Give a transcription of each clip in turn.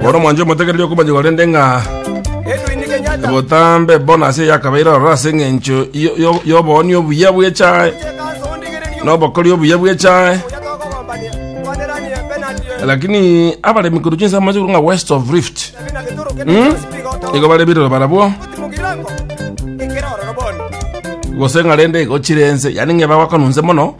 bono mwanche omotegereria okomanyigwa rende ng'a botambe bono ase yakabeire ororo ase eng'encho yo- yo- y'obooni obuya bw'echae n'obokori obuya bw'echae lakini abaremi korwa chinsa amache korwa ng'a west of rift igo bare birero barabwo gose ng'a rende igo chire ense yani ng'eba bakonunse mono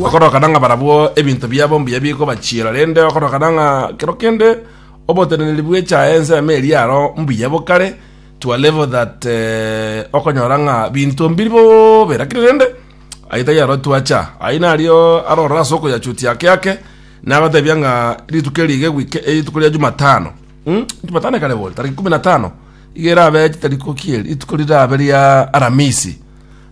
Okorokana ng'a barabwo ebinto biabo mbuya bikobachiera, rende okorokana ng'a kero kende oboteneneri bwecha ensemo eria aro mbuya bokare to a level that eh, okonyora ng'a binto mbiri bobe lakini rende ayio tari aro twacha ayio nario arorora ase okoyachutia ake ake nagotebia ng'a rituko eri iga ewike rituko ria jumatano mm? jumatano ekare boria tariki kumi na tano iga erabe chitariki okie rituko rirabe ria aramisi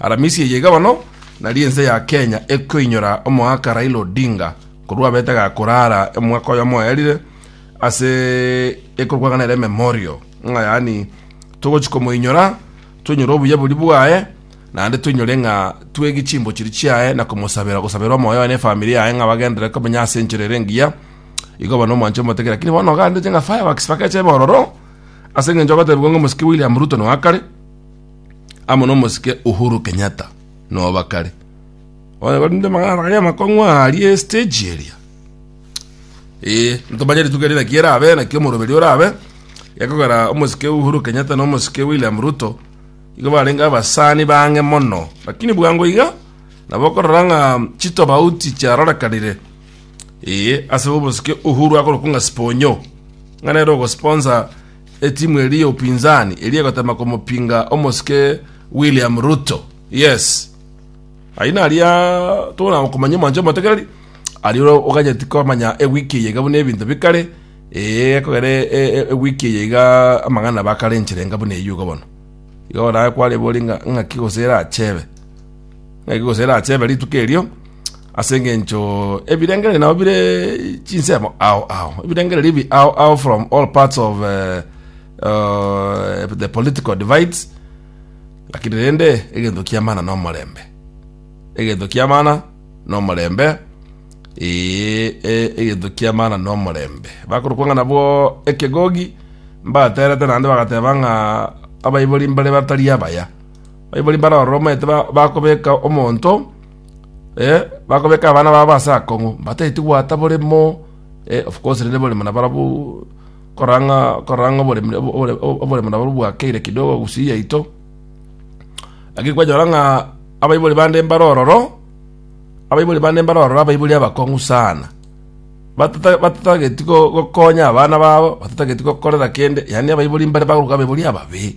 Aramisi eye iga bono nari ense ya Kenya ekoinyora omoaka Raila Odinga korwa abete gakorara omwaka oyomo oyarire ase ekorwang'ana ere memorial ng'a yaani togochi komoinyora toinyore obuya bori bwaye naende toinyore ng'a twegi chimbo chiri chiaye na komosabera gosabera omoyo na efamiri yaye ng'a bagenderere komenya ase enchera ere engiya igo bono omwanche omoteke lakini bono ogandeche ng'a fireworks bakeche bororo ase eng'encho ogotebigwa ng'a omosike William Ruto noakare amo nomosike Uhuru Kenyatta noba kare oye gorinde magana gaya makong'wa arie stage eria eh ntomanye rituko eria naki erabe naki omoroberi orabe ekogera omosike Uhuru Kenyatta nomosike William Ruto igo barenge abasani bang'e mono lakini bwango iga nabo okorora ng'a chitobauti chiarorekanire eh ase obosike Uhuru agorokunga Sponyo ng'a nere ogosponsor Etimu eria ya upinzani eria egotema komopinga omosike William Ruto. Yes. Ayi naria tona okomanya omanche omotegereri. Ari oganyeti komanya ewiki yega buna ebinto bikare. Ee kogere ewiki yega amangana bakare enchire enga buna eyugo bono. Igo naye kware boringa ngaki gosera achebe. Naki gose erachebe rituko erio, ase engencho ebirengererio nabo bire chinsemo ao ao, ebirengererio ebi ao ao from all parts of uh, uh, the political divides, lakini rende egento kiamana na omorembe egento kiamana na omorembe ee e- egento kiamana na omorembe bakorokwa ng'a nabwo ekegogi mbaterete naende bagateba ng'a abaibori mbare batari abaya Baibori mbare ororo omanyete bakobeka omonto, bakobeka abana babo ase akong'u, mbatageti goata boremo, of course rende oboremo na barabwo korora ng'a korora ng'a oboremo na barobwo bwakeire kidogo gusii yaito, lakini kwanyora ng'a abaibori bande mbare ororo, abaibori bande mbare ororo abaibori abakong'u sana, batata batatageti gokonya abana babo, batatageti gokorera kende, yaani abaibori mbare bakorokwa abaibori ababe.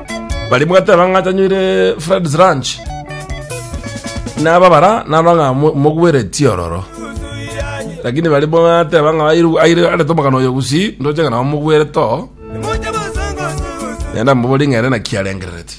Baria bwateba ng'a tanywire Fred's Ranch. Nababara narora ng'a mo- mogweretie ororo. Lakini baria bwateba ng'a airu- aire arete omogano oyo gusii, ndoche ng'a nabo mogwerete oo. Nenda mbabori ng'a ere naki arengerereti.